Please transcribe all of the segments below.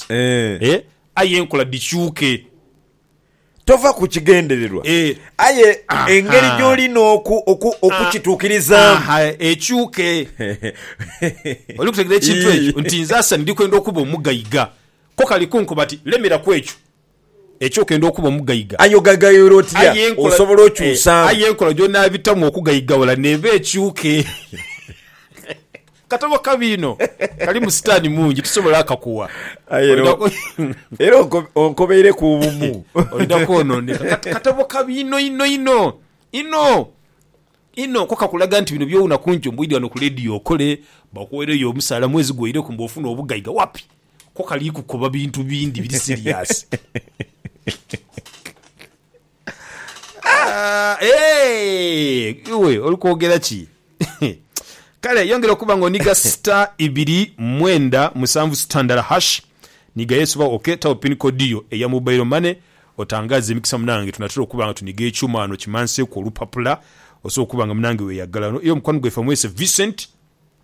Eeh. Eh, aye enkola dhikyuke. Tova ku kigendererwa, Eh. aye Aha. engeri gy'oli n'oku, oku, okukituukirizaamu. Aha, ekyuke. Oli kutegeera ekintu ekyo? Nti nze Asani ndi kwenda okuba omugaiga. Ko kali kunkoba ati, Lemera ku ekyo. Ekyo okenda okuba omugaiga. Aye ogaigaiwula otya? Osobola okyusaamu. Aye enkola gy'onaabitamu okugaigawula n'eba ekyuke. Katabo kabi inho. Kalimu sitaani mungi. Tisobola akakuwa. Aye era onkobeireku obumu. Olina kwonooneka. Katabo kabi inho inho inho. Inho. Inho. Ko kakulaga nti bino by'owuna ku njo mbu idha wano ku leediyo okole, bakuweereyo omusaala mwezi gwoireku mbu ofune obugaiga. Wapi! Ko kali kukoba bintu bindi biri siriyasi. Iwe oli kwogera ki? Kale yongera okuba nga oniga star ibiri mwenda musanvu star ndala hash niga Yesu ba ok tagho pin code yo eya mobile money otangaze emikisa munange tunatera okuba nga tuniga ekyuma wano kimanseku olupapula osobola okuba nga munange weyagala. Era omukwano gwaife amwese Vincent.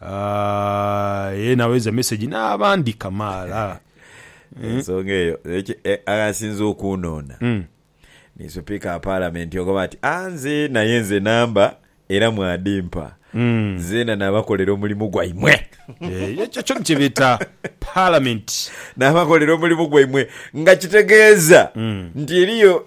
Aye naweza message n'abandi kamaala. Ensonga eyo ekyo aghasinze okunhoona ni Supiika wa Palamenti ogoba ati, Anze naye nze namba era mwadimpa nzeena nabakolera omulimu gwaimwe. Ekyo kyona kye beeta Palamenti. Nabakolera omulimu gwaimwe nga kitegeeza nti eriyo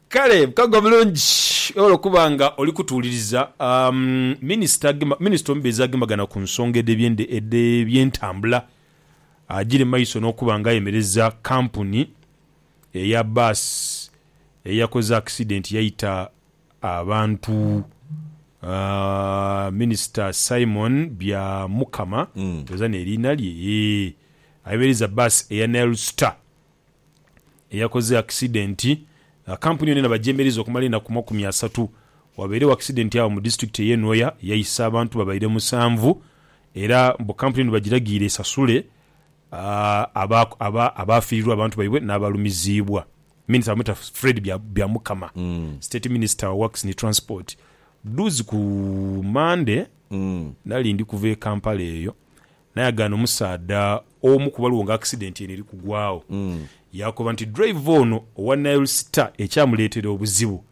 Kale bukago bulungi olwokuba nga oli kutuwuliriza minisita minisita omubezi agembagana ku nsonga edh'ebyende edh'ebyentambula agire mu maiso n'okuba nga ayemereza kampuni eya bbaasi eyakoze akisidenti yaita abantu Minisita Simon Byamukama, ndhowooza n'eriina lye, yee, ayemereza bbaasi eya Nile Star. eyakoze akisidenti nga kampuni yona enabagyemeriza okumala enaku makumi asatu wabairegho akisidenti agho mu disitulikiti eye Nwoya yaisa abantu babaire musanvu era mbu kampuni eno bagiragiire esasule abaafiirirwa abantu baibwe n'abalumiziibwa. Minisita bamweta Fred Byamukama, State Minister wa Works ni Transport. Dhudhuuzi ku Mande nali ndi kuva e Kampala eyo Nayagaana omusaadha omu ku baliwo nga akisidenti eno eri kugwaagho. Yaakoba nti dreiva ono owa Nile Star ekyamuleetera obuzibu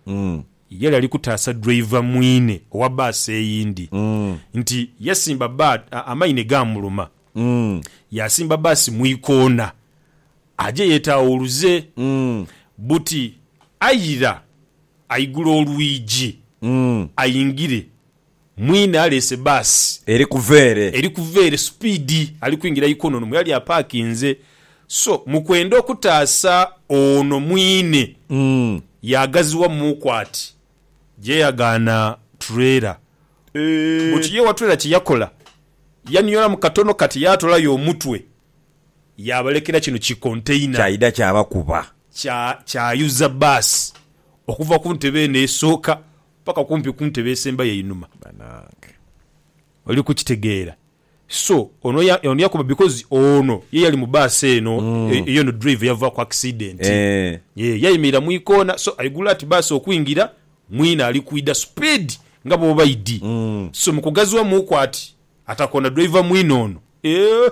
yali ali kutaasa dreiva mwine owa bbaasi eyindi nti yasimba bba amaine gaamuluma yaasimba bbaasi mu ikoona aje yeetaawuluze buti aira aigula olwigi aingire. Mwine aleese bbaasi. Eri kuva ere. Eri kuva ere supiidi. Ali kwingira Ikononomu. Yali apaakinze. So, mu kwenda okutaasa ono mwine, yaagaziwa muuku ati, je yagaana tureela. Bwekyo ye owa tureela kye yakola, yaniolamu katono kati yaatolayo omutwe, yaabalekera kino ki konteina. Kyaidha kyabakuba. Kya, kyayuza bbaasi okuva ku ntebe eno esooka paka kumpi ku ntebe esembayo einhuma. Banange oli kukitegeera so ono yakoba because ono ye yali mu bus eno eyo no driver yava ku accident yee yayimirira mu ikoona so aigula ati bus okwingira mwine ali kwidha speed nga bwobaidhi so mukugaziwa muuku ati atakoona driver mwine ono eeh.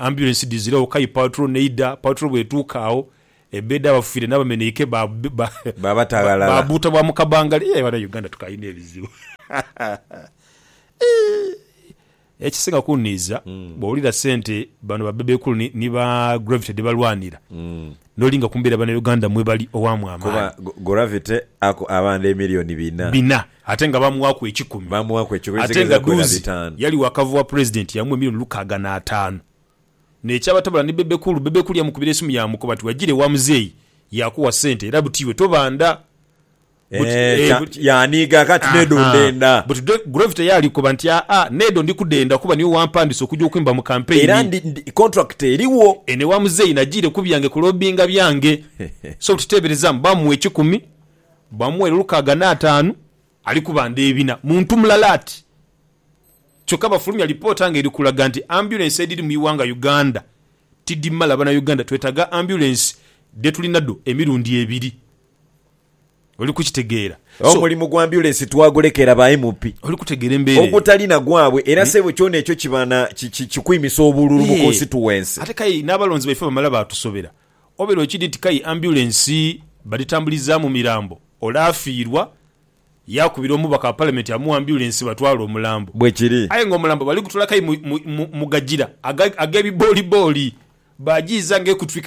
Ambyulensi dhiziregho kayi patro n'eidha. Patro bw'etuuka agho, ebbeeda abafiire n'abameneike Baabata ghalala. Baabuuta bwa mu kabangala. Eeh bana Uganda tukyalina ebizibu. Eeh! Ekisinga kunniiza, bw'owulira sente bano ba Bebe Cool ni ba Gravity dhebalwanira, Nolinga ku mbeera Banauganda mwe bali, owaamu Kuba amaani. Gravity aku abandha emillion bina. Bina. Ate nga baamuwaaku ekikumi. Baamuwaaku ekikumi, Ate ezigheza nga kuwera dhuuzi bitaanu. yali wakava wa President yamuwa emillion lukaaga n'ataanu. N'ekyabatabula ni Bebe Cool, Bebe Cool yamukubira esimu yaamukoba ati, Wagira ewa Muzeeyi yakuwa sente era buti iwe tobandha. But, Eh, eh, kya- but- yaaniiga kati Aha. nedo ndenda But today Groove teyali koba nti aa nedo ndi kudenda kuba niwe wampandisa okuja okwimba mu campaign. era ndi, ndi, contract eriwo Eno ewa muzeeyi nagiire ku byange kulobinga byange. so buti teeberezamu bamuwa ekikumi, bamuweera olukaaga n'ataanu, ali kuba ndheebina. Muntu mulala ati. Kyokka bafulumya lipoota nga eri kulaga nti ambulance edhiri mu iwanga Uganda tidhimala. Banayuganda twetaaga ambulance dhe tulina dho emirundi ebiri. Oli kukitegeera? So. Omulimu gwa ambyulensi twagulekera ba MP. Oli kutegeera embeera eyo? Ogutali na gwabwe. Era ssebo kyona ekyo kiba na, ki, ki, kikwimisa obululu mu Eeh. konsituwensi. Ate k'aye n'abalonzi baife bamala baatusobera. Obeera okidhi nti k'aye ambyulensi badhitambulizaamu mirambo, ole afiirwa, yaakubira omubaka wa Palamenti amuwe ambyulensi batwale omulambo. Bwe kiri. Aye ng'omulambo bali gutwala k'aye mu, mu, mu, mu gagira aga, ag'ebiboolibooli, baagiiza ng'ekutwike.